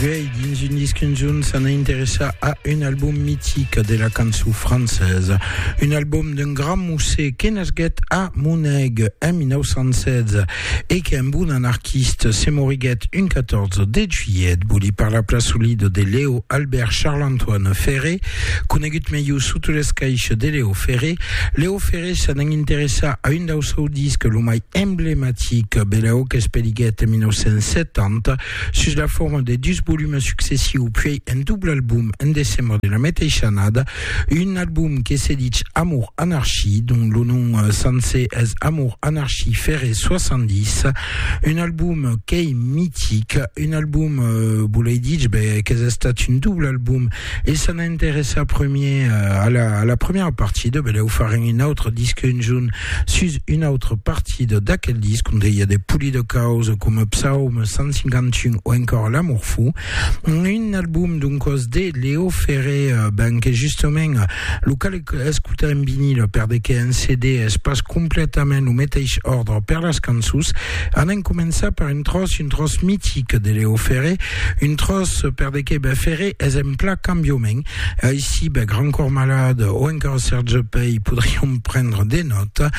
Vei dins un disc un jorn s'ana interessar a un album mitic de la cançó francesa, un album d'un grand musser que nasguèt a Moneg en 1916 e qu'es un bon anarquiste, se moriguèt un 14 de juilhet. Voli parlar pla solida de Leo Albert Charles-Antoine Ferré, Conegut melhor sota l'escaich de Leo Ferré, Leo Ferré s'an en interessar a un dau seu disc lo mai emblematic, Belao qu'es peliguèt en 1970 sus la forma de dus volumes successius puèi un doble album en decembre de la meteissa annada, un album que se dich Amour Anarchie, dont lo nom sencer es Amour Anarchie Ferré 70, un album qu'ei mitic, un album, volei dich, ben, qu'es estat un doble album E s'an a interessar premier a la, a la premiera partida, beleu farem un autre disque un junt sus una autra partida d'aquel disc, onde i a de polida causa coma Psaum 151 o encòra L'amour fou. Un album doncòs de Leo Ferré, euh, ben que justament lo cal escotar en vinil per de que en CD es pas completament lo meteish ordre per las cançons. Anem començar per un tros, un tros mitic de Leo Ferré, Un tròç per de qué? Ben feré es en pla cambiament. Aicí, ben Grand Corps Malade o encara Serge Pey podrion prendre de nòta.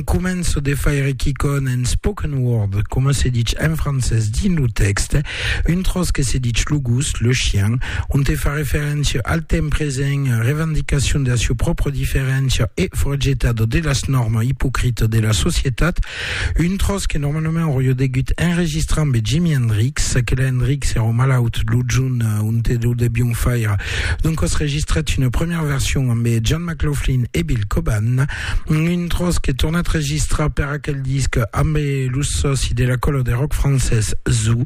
Començo de faire quicòn en spoken word, coma se ditz en francés dins lo tèxte, un tròç que se ditz lo gos, le chien, onte fa referéncia al temps present, revendicacion de la sieu pròpria diferéncia e forjetado de las nòrmas ipocritas de la societat. Un tròç que normalament auria degut enregistrar ambe Jimi Hendrix, que la Hendrix èra malaut lo junh onte lo devion faire, doncas registret una premièra version ambe John McLaughlin e Bill Coban, un tròç que tornat registrar per aquel disc ambe los sòci de la còla de rock francés Zoo.